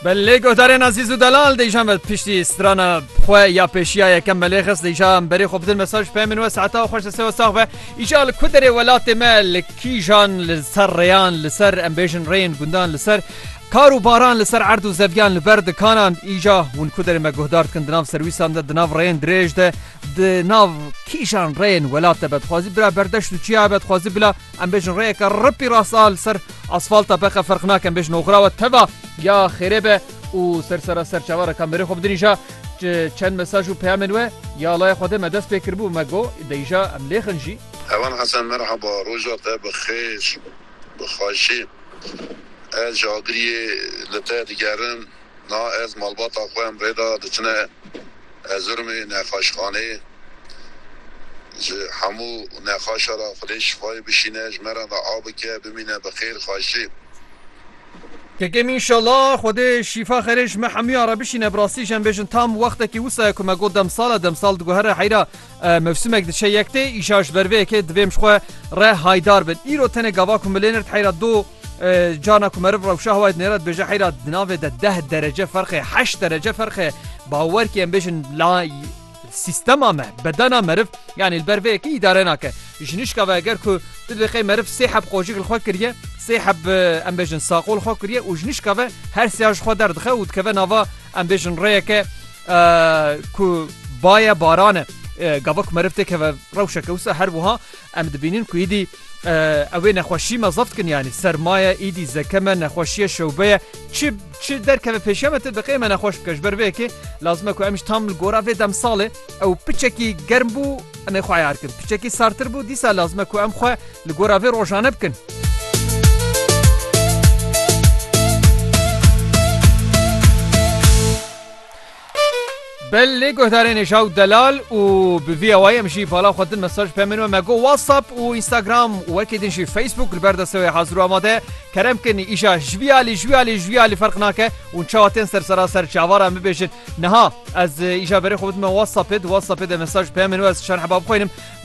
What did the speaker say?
Belê lê guhdarên Azîz û Delal dêjan ve piştî strana xwe ya pêşiya yekem belê xist dêja berê xwe bidin mesaj pê min we saeta xweş destê we sax be îja li ku derê welatê me li kîjan li ser rêyan li ser em bêjin rêyên gundan li ser Kar û baran li ser erd û zevyan li ber dikanan îja hûn ku derê me guhdar dikin di nav serwîsan de di nav rêyên dirêj de di nav kîjan rêyên welat de betxwazî bira berdeş û çiya betxwazî bila Em bêjin rêyeke ripî rasta li ser asfalta beqe ferq nake em bêjin oxira we teva ya xêrê be û ser sera ser çava re kamerê xwe bidirîja çend mesaj û peyamên we ya laya xwe dê me dest pê kiribû me got deyîja em lêxin jî. Hevan Hesen Merhaba roja te bi xêr bi xaşî ez ji agiriyê li te digerim Na ez malbata xwe em rê da diçine Erzirumê nexaşxaneyê ji hemû nexaşa ra xwedê şifayê bişîne ji me re da a bike bimîne bi xêr xaşî. Kekem inşala xwedê şifa xerê ji me hemûyan re bişîne bi rastî ji em bêjin tam wextekî wisa ye ku me got demsal e demsal diguhere heyra Mevsimek diçe yektê îşa ji ber vê yekê divê em ji xwe re haydar bin. Îro tenê gava ku milên erd heyra do cana ku meriv rewşa hewayê nêra dibêje heyra di navê de deh derece ferqê heşt derece ferqê bawerkê em bêjin la سیستما me bedena meriv yanî li ber vê yekê îdare nake jinişka ve eger ku tu dibê qey meriv sê heb qojik li xwe kiriye sê heb em bêjin saqol xwe kiriye û jinişka ve her sêya ji xwe derdixew û dikeve nava em bêjin rêyeke ku baye baran e. Gava ku meriv têkeve rewşeke wisa her wiha em dibînin ku êdî ew ê nexweşî me zeft kin yanî sermaye êdî zeke me nexweşiye şewbe ye çi çi derkeve pêşiya me te diqê me nexweş bike ji ber vê yekê lazim e ku em ji tam li gora vê demsalê ew piçekî germ bû em ê xwe ayar kin piçekî sartir bû dîsa lazim e ku em xwe li gora vê rojane bikin. Belê guhdarên êşa û delal û bi vî awayî em jî bala xwe din mesaj pê min we me got whatsapp û instagram û wekî din jî facebook li ber destê wê hazir û amade ye kerem kin îşa jvîya lê jwîya lê jwîya lê ferq nake hûn çawa tên ser sera ser çavar em bibêjin niha ez îşa berê xwe bidime whatsappê di whatsappê de mesaj pê min we ez çend heba bixwînim